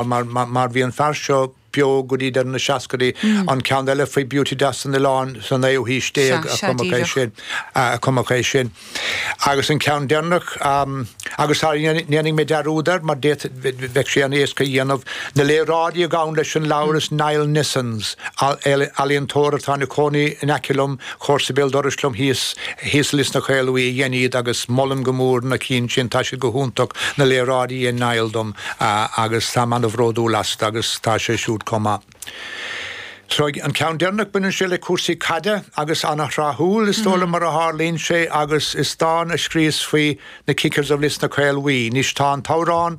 Mar, mar, mar bhí an fear seo beo go dtí deireadh na seascaidí. An ceann eile faoi Beauty Deas an Oileáin sa naoú haois déag Sea, a sea, cumadh é díreach. sin, a, a cumadh é sin. Agus an ceann deireanach, am, agus sara ndéan, ndéanfaidh mé dearúd air mar d'fhéadfadh, bhei, bhei, bheadh sé an-éasca a dhéanamh, na léaráidí a ghabhann leis an leabhar is Niall Nissens, eal, ealaíontóir atá ina cónaí in aice liom, comharsa béal dorais liom thíos, thíos i Lios na Caol Bhuí a dhein iad agus molaim go mór na cinn sin, tá siad go hiontach, na léaráidí a dhein Niall dom agus táim an-bhródúil astu agus tá sé siúd comh maith. So an ceann deireanach, baineann sé le cúrsaí caide agus an-thráthúil is dóigh liom mar a tharlaíonn sé agus is dán a scríos faoi na Kickers of Lios na Caol Bhuí. Anois tá an t-amhrán,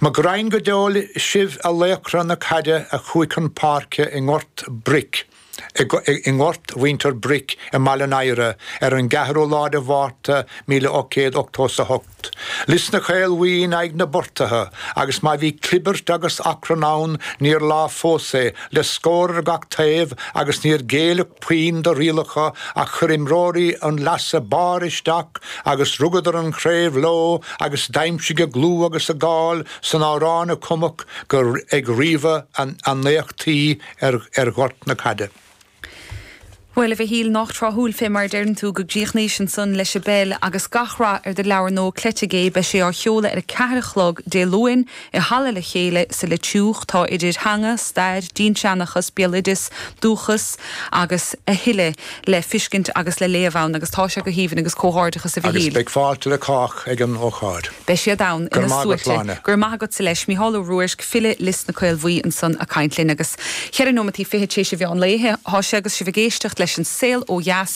Mo ghraidhn go deo sibh a laochra na caide a chuaigh chun páirce i nGort Bric, i nGort Mhuintir Bric i mBaile an Aoire ar an gceathrú lá de Mhárta míle ocht gcéad octó 's a hocht. Lis na Caol Bhuí in aghaidh na bPortaithe agus má bhí clibirt agus acrann ann níor lá fós é, le scór ar gach taobh agus níor géilleadh, puinn do rialacha ach chuir imreoirí an leasa barr isteach agus rugadar an chraobh leo agus d'aimsigh a gclú agus a gcáil san amhrán a cumadh ag ríomhadh a n-éachtaí ar ghort na caide. Bhuel, a Mhichíl, nách tráthúil fé mar a deireann tú go gcríochnóimis ansan leis an bpeil agus gach rath ar do leabhar nua Cleite Gé, beidh sé á sheoladh ar a ceathair a chlog Dé Luain, I Halla le Chéile sa Leitriúch, tá idir theanga, stair, dinnseanchas, béaloideas, dúchas agus a thuilleadh le fiscint agus le léamh ann agus tá sé go haoibhinn agus comhghairdeachas a Mhichíl. Agus beidh fáilte le cách ag an ócáid. Beidh siad ann Go raibh ina maith agat, suaite. Sláine. Go raibh maith agatsa leis. Micheál Ó Ruairc, file Lios na Caol Bhuí ansan a' caint linn agus cheithre nóimeataí fichid téis i mheán lae thá sé agus sibh ag éisteacht leis An Saol Ó Dheas.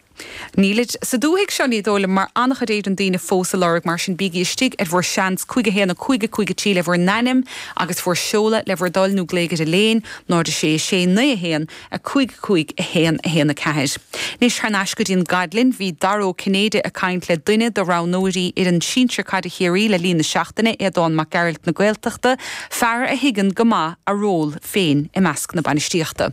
Nílid sa dúthaigh seo, ní dóigh liom, mar an-chuid daoine fós á lorg, mar sin bígí istigh ar bhur seans, cúig a haon, a cúig, a cúig a trí le bhur n-ainm agus bhur seoladh le bhur dtoil nó glaoigh ar Elaine, 0 6 6 9 1 5 5 1 1 4. Anois thar n-ais go dtí an Gaoluinn. Bhí Dara Ó Cinnéide ag caint le duine do roghnóirí fhoireann sinsir caide Chiarraí le línn na seachtaine, Aodán Mac Gearailt na Gaeltachta, fear a thuigeann go maith a ról féin i measc na bainistíochta.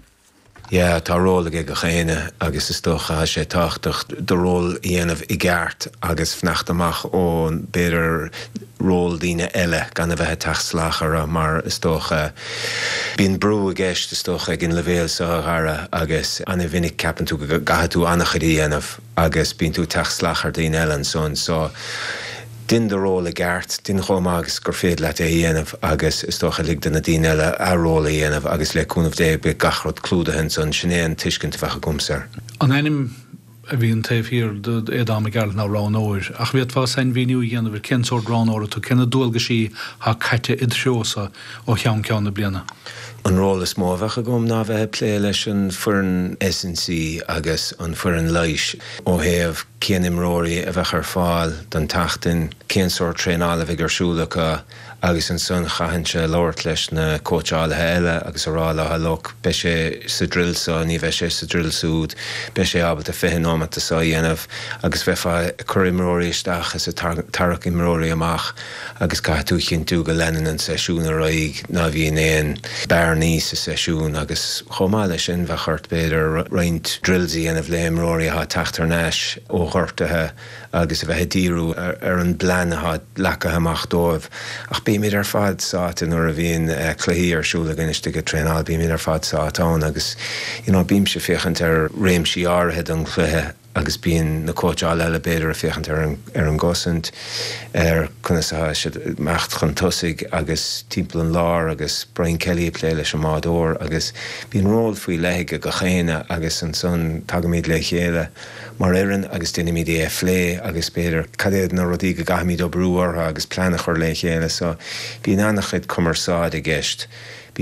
Yeah, tá ról aige gach éinne agus is dócha tá sé tábhachtach do ról a dhéanamh i gceart agus fanacht amach ó b'fhéidir ról daoine eile gan a bheith ag teacht salach orthu mar is dócha bíonn brú i gceist is dócha ag an leibhéal seo a Dhara agus an-mhinic ceapann tú go gcaithfidh tú an-chuid a dhéanamh agus bíonn tú ag teacht salach ar daoine eile ansan so din do ról i gceart, din chomh maith agus is féidir leat é a dhéanamh agus is dócha lig do na daoine eile a ról a dhéanamh agus le cúnamh Dé beidh gach rud clúdaithe ansan, sin é an tuiscint a bheadh agamsa air. An ainm a bhíonn taobh thiar d'Aodán Mac Gearailt ná roghnóir, ach an bhféadfá sainmhíniú a dhéanamh ar cén sórt roghnóra tú, cé na dualgaisí atá caite id threo-sa ó cheann ceann na bliana. An ról is mó a bheadh agam ná a bheith ag plé leis an foireann S&C agus an foireann leighis ó thaobh cén imreoirí a bheadh ar fáil don tseachtain, cén sórt traenála a bheidh ar siúl acu agus ansan chaithfinnse labhairt leis na cóitseálaithe eile agus a rá leo 'look, beidh sé sa drill seo, ní bheidh sé sa drill súd, beidh sé ábalta fiche nóimeata seo a dhéanamh' agus bheifeá ag cur imreoirí isteach is ag tarrac imreoirí amach. agus caithfidh tú a chinntiú go leanann an seisiún ar aghaidh, ná bhíonn aon bearnaí sa seisiún agus chomh maith leis sin bheadh ort b'fhéidir roinnt drills a dhéanamh le imreoirí atá ag teacht thar n-ais ó ghortuithe agus a bheith ag díriú ar an bplean atá leacaithe amach dóibh ach bímid ar fad sáite nuair a bhíonn cluichí ar siúl againn istigh ag traenáil, bímid ar fad sáite ann agus you know bímse ag féachaint ar réimsí áirithe den chluiche. agus bíonn na cóitseálaithe eile b'fhéidir ag féachaint ar an ar an gcosaint, ar conas atá siad ag imeacht chun tosaigh agus timpeall an láir agus Brian Kelly ag plé leis an mbádóir agus bíonn ról faoi leith ag gach éinne agus ansan tagaimid le chéile mar fhoireann agus deinimid é a phlé agus b'fhéidir cad iad na rudaí go gcaithfimid oibriú orthu agus plean a chur le chéile so bíonn ana-chuid cumarsáide i gceist.